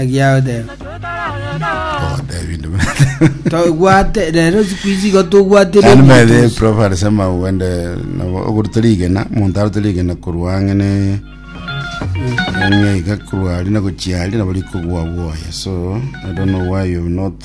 Egiao tebe. Togotebia nde buna. Tobwate rero siku ici igo tobwate Yaani by the way, prof alisema uende na ogoruta rigena omonto arote rigena korwa ang'e ne ang'e iga korwa ari na gochia ari nabo rikogwa bwoye so i don't know why you have not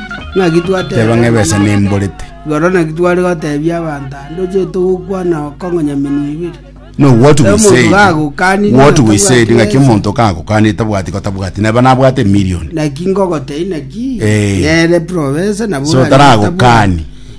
Ng'aki twateba Teba ng'a ebesa abanto- nemborete. Igoro naki tware gotebia abanto ande ochete gokwana okong'onyaminwa ibere. No, what we Omonto said, gagokanire what we natabwati said, ng'aki ensa. omonto kagokanire tabwati gotabwati, neba nabwate million. Naki ngogotei naki Eh. nere profesa nabo So oranyare taragokani.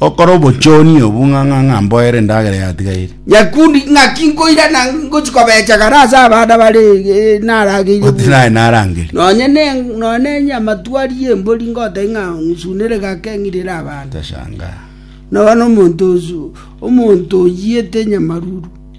Gokora obochoonia obo ng'a ng'a ng'a mboere endagera yatigaire. Nyakundi, ng'aki nkoirana ngochia kobecha kare ase abana bare eh, narageire Goti buna. naye narangeri. Nonye ne nonye nenye amatwari y'embori ngotebia ng'a nsunere gake ng'irere abana. Tashangaa. Nobono omonto osu omonto oyete nyamaruru.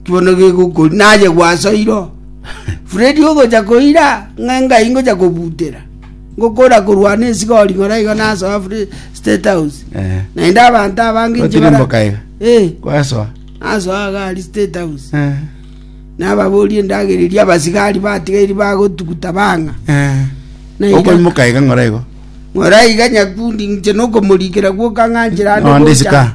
Naki bono gegokori naye gwasoiro. Fredi ogocha koira ng'a engai ngocha kobutera. Ngokora korwana esiga oring'ora iga nasoa Fre- State House. Eh. Naende abanto abange inche bara- Otirimboka iga. Eh, Kwasoa. nasoa iga ari State House. Eh. Nababoria endagera eria abasigari batigairi bagotuguta bang'a. Eh. Na iga- Okoimoka iga ng'ora igo. ng'ora iga nyakundi inche nokomorikera gwoka ng'a nchera ande Onde gocha. isika.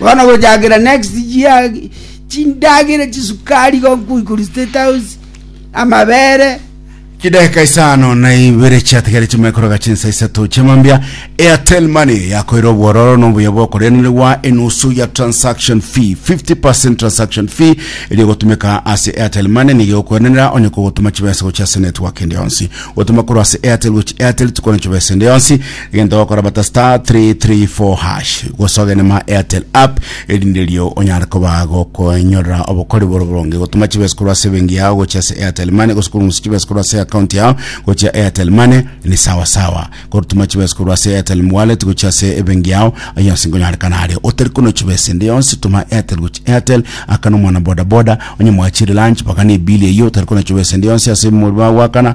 Bono gochakera next year chindagera chisukari gonkuikuri state house amabere chidakika isano na ibere chiatigareti maikoroga chinsa isato chiamambia airtel money yakoire obwororo na obuya bw'okoreanerwa enusu ya transaction fee 50 transaction fee eri egotumeka ase airtel money nigo egokweranera onye kogotuma chibesa gochia ase network ende yonsi gotuma korwa ase airtel gochia airtel tikwana chibesa ende yonsi Egento ogokora bata star 334 hash gosogene ma airtel app erinde erio onyare koba gokonyorera obokori bore boronge gotuma chibesa korwa ase ebenki yao gochia ase airtel money gose korungusa chibesa korwa ase account yao gochia airtel money ni sawa sawa korutuma chibesa korwa ase airtel wallet gochia ase ebenki yao ayo yonsi nkonyorekana aria otari kono chibesa ende yonsi tuma airtel gochia airtel akana omwana boda boda onye mwachire lunch bagana ebili eyio otari kono chibesa ende yonsi ase omori bago akana